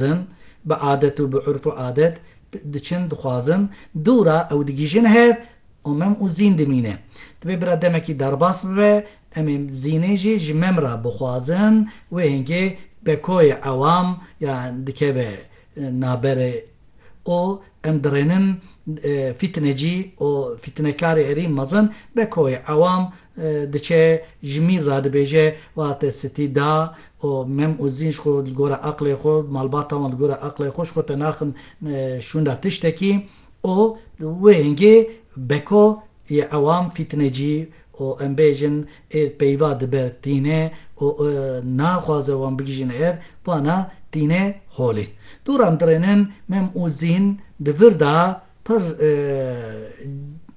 dixwazin, bi adet û bi urf û adet diçin, dixwazin, dûra ew digihîjin hev û mem û zîn dimîne. Divê bira demekî derbas bibe, em ê zînê jî ji mem ra bixwazin, wê hingê bekoyê ewam ya dikeve naberê û em dirênin fîtinecî û fîtinekarê herî mezin, bekoyê ewam Diçe ji mîr ra dibêje wiha te sitî da û mem û zîn ji xwe li gora aqlê xwe, malbata wan li gora aqlê xwe ji xwe te naxin şûnda tiştekî û di wê hingê beko yê ewam fîtinecî û em bêjin ê peyva dibe tîne û naxwaze wan bigihîjîne ev wana tîne holê. Dû re em dirênin mem û zîn di vir da, Pir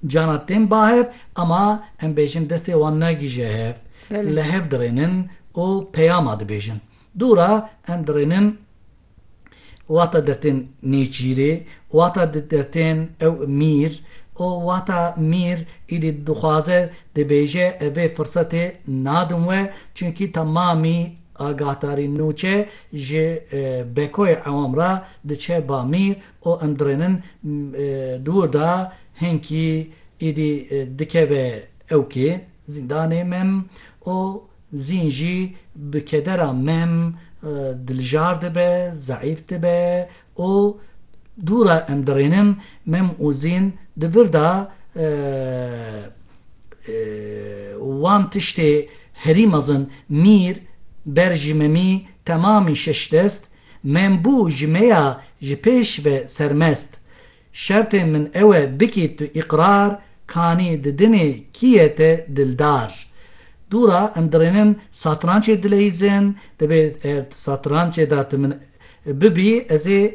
canan tên ba hev ama em bêjin destê wan nagihîje hev. Li hev dirênin û peyama dibêjin. Dûra em dirênin wata dertên nêçîrê, wata dertên ew mîr û wata mîr êdî dixwaze dibêje ev ê firsetê nadin we çunkî temamî agahdarî nûçe ji bekoyê ewam re diçe ba mîr û em dirênin di wir de hênkî êdî dikeve ewkê zîndanê mem û zîn jî bi kedera mem dilijar dibe, zeîf dibe û dû re em dirênin mem û zîn di vir de wan tiştê herî mezin mîr ber jî memî temamî şeş dest Min bû ji me ya ji pêş ve sermest. Şertê min ew e bikî tu îqrar kanî di dinê kî ye te dildar. Dûra em dirênin satrançê dileyîzin, divê ev satrançê de tu min bibî ez ê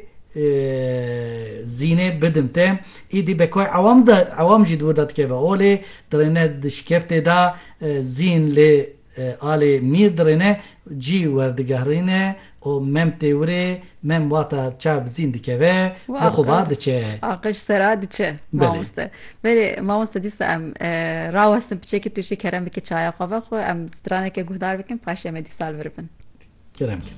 zînê bidim te. Îdî bekoy ewam de ewam jî di wir de dikeve holê, dirêne di şikeftê de zîn lê alê mîr dirêne cî werdigehrîne û mem tê wurê, mem wata çav bi zîn dikeve û xwe ba diçe. Aqij sera diçe mamoste. Belê mamoste dîsa em rawestin piçekî tu jî kerem bikî çaya xwe ve xwe em straneke guhdar bikin paşê em ê dîsa li vir bin. Kerem kin.